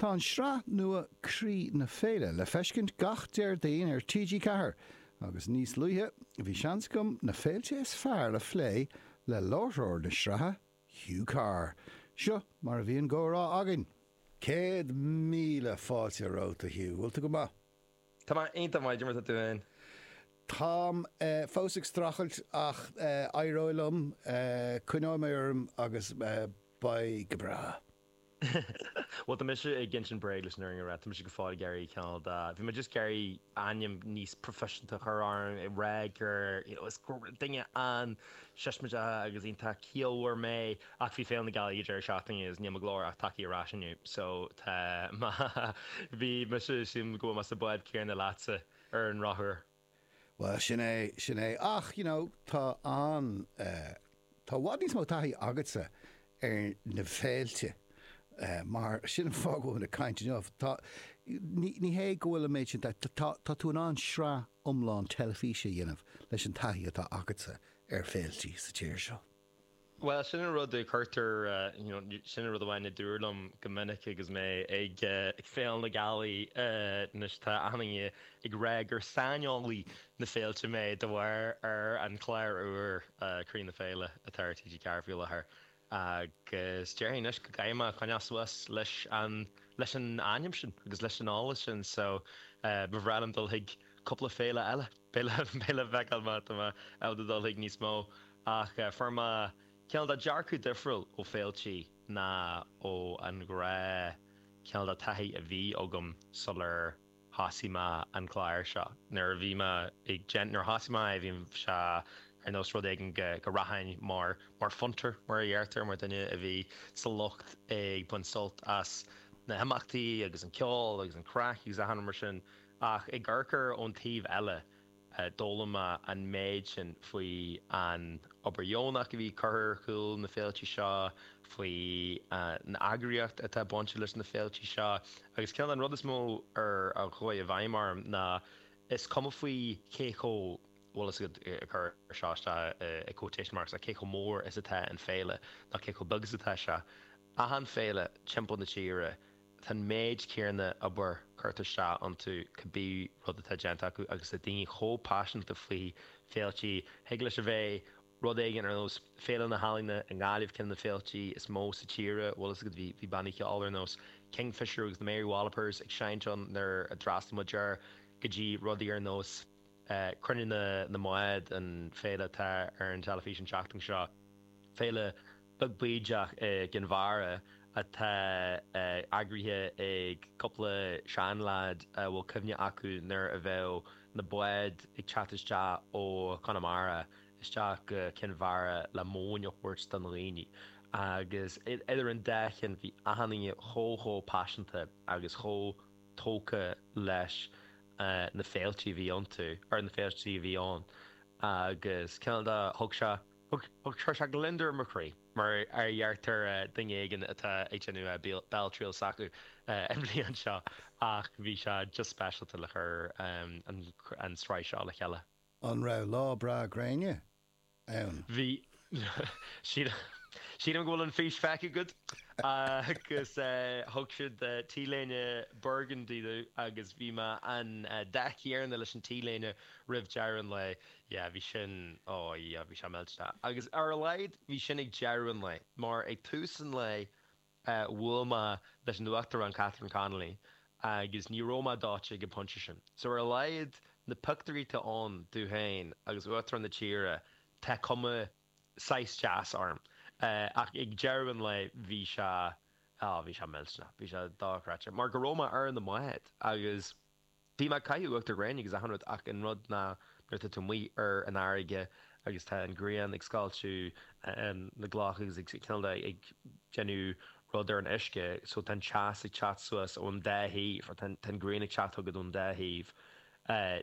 Tá an sraith nua Croí na Féile le feiscint gach Déardaoin ar TG4 agus níos luaithe bhí seans agam na féilte is fearr a phlé le láithreoir na sraithe, Hugh Carr. Seo mar a bhí an gcomhrá againn. Céad míle fáilte romhat, a Hugh. Bhfuil tú go maith? Tá mé iontach maith, Diarmuid, tá tú féin? Táim fós ag strachailt ach éireoidh liom, coinneoidh mé orm agus beidh go breá. Bhuel, tá mise ag insint bréag leis an fhírinne a rá, tá mise go fóill ag iarraidh cineál de, bhí mé just ag iarraidh ainm níos proifisiúnta a chur orm, ag rá gur, you know, is duine an-siosmaideach agus iontach ciallmhar mé, ach bhí Féile na Gealaí ag deireadh seachtaine agus níl mo ghlór ach tagtha ar ais inniu, so tá, má bhí mise, sílim go bhfuil mé sa bád céanna leatsa ar an rothar. Bhuel, sin é, sin é. Ach, you know, tá an eh, tá i bhfad níos mó taithí agatsa ar na féilte eh, mar sin an fáth go bhfuil muid ag caint inniu. Tá, ní, ní hé go bhfuil an méid sin taithí, tá, tá, tá tú in ann sraith iomlán teilifíse a dhéanamh leis an taithí atá agatsa ar féiltí sa tír seo. Bhuel, sin an rud a chuirtear, you know, sin an rud amháin a dúradh liom go minic agus mé ag Féile na Gealaí, anois tá achan duine ag rá gur saineolaí na féilte mé de bharr ar an chlár úr, Croí na Féile, atá ar TG4 faoi láthair agus déarfainn anois go gcaithfidh mé coinneáil suas leis an, leis an ainm sin agus leis an eolas sin, so, ba bhreá liom dul chuig cúpla féile eile. Beidh le feiceáil má tá mé ábalta dul chuig níos mó, ach fuair mé cineál de dearcadh difriúil ó féiltí ná ó an ghnáth cineál de taithí a bhí agam sular thosaigh mé an clár seo. Nuair a bhí mé ag déan, nuair a thosaigh mé é, bhí sé ar nós rud éigin go go rachainn mar mar phunter, mar a deirtear, mar duine a bhí sa lucht ag baint sult as na himeachtaí agus an ceol agus an craic agus achan rud mar sin. Ach ag amharc air ón taobh eile, d'fhoghlaim mé an méid sin faoi an obair dheonach a bhí curtha ar chúl na féilte seo, faoi an eagraíocht atá bainte leis na féilte seo, agus cineál de an rud is mó ar a chuaigh i bhfeidhm orm ná is cuma faoi cé chomh, bhfuil fhios agat, cuir seo isteach i quotation marks, ná cé chomh mór is atá an féile, ná cé chomh beag is atá sé, achan féile timpeall na tíre, Tá an méid céanna obair curtha isteach iontu cibé rud atá déanta acu agus tá daoine chomh paiseanta faoi féiltí. Thig leis a bheith rud éigin ar nós Féile na hEalaíona i nGaillimh, ceann de na féiltí is mó sa tír, bhfuil fhios agat bhí bannaí ceoil ar nós Kingfishr agus na Mary Wallopers ag seinnt ann nuair a d'fhreastal muid air, go dtí rudaí ar nós Cruinniú na mBád, an féile atá ar an teilifís an tseachtain seo, Féile beag bídeach i gCinn Mhara atá eagraithe ag cúpla seanleaid a bhfuil cuimhne acu nuair a bheadh na báid ag teacht isteach ó Chonamara isteach go Cinn Mhara le móin a thabhairt do na dhaoine agus idir an dá cheann bhí achan duine chomh chomh paiseanta agus chomh tógtha leis na féilte a bhí iontu, ar na féilte a bhí ann agus cineál de, thug sé. Chuir sé gliondar i mo chroí, mar a déarfadh duine éigin atá ag déanamh béaltriail s'acu i mbliana seo, ach bhí sé just speisialta le chur an sraith seo le chéile. An raibh lá breá gréine ann? Bhí. Sílim go bhfuil an fís feicthe agat. Agus thug siad t-léine burgundy domh agus bhí mé an dath céarna leis an t-léine roimh dheireadh an lae. yeah bhí sin oh yeah bhí sé millte agus ar a laghad bhí sin ag deireadh an lae mar ag tús an lae bhuail mé leis an Uachtarán Catherine Connolly agus ní raibh mé dóite ag an bpointe sin so ar a laghad na pioctúirí atá ann domh féin agus Uachtarán na tíre tá cuma saghas deas orm ach ag deireadh an lae bhí sé oh bhí sé millte bhí sé dochreidte mar go raibh mé ar na báid agus Bhí mé ag caitheamh uachtar gréine agus achan rud ach an rud ná nuair atá tú amuigh ar an fharraige agus tá an ghrian ag scoilteadh na gcloch agus ag cineál de ag déanamh rud ar an uisce so tá an teas ag teacht suas ón dá thaobh, tá an ghrian ag teacht chugat ón dá thaobh, ní.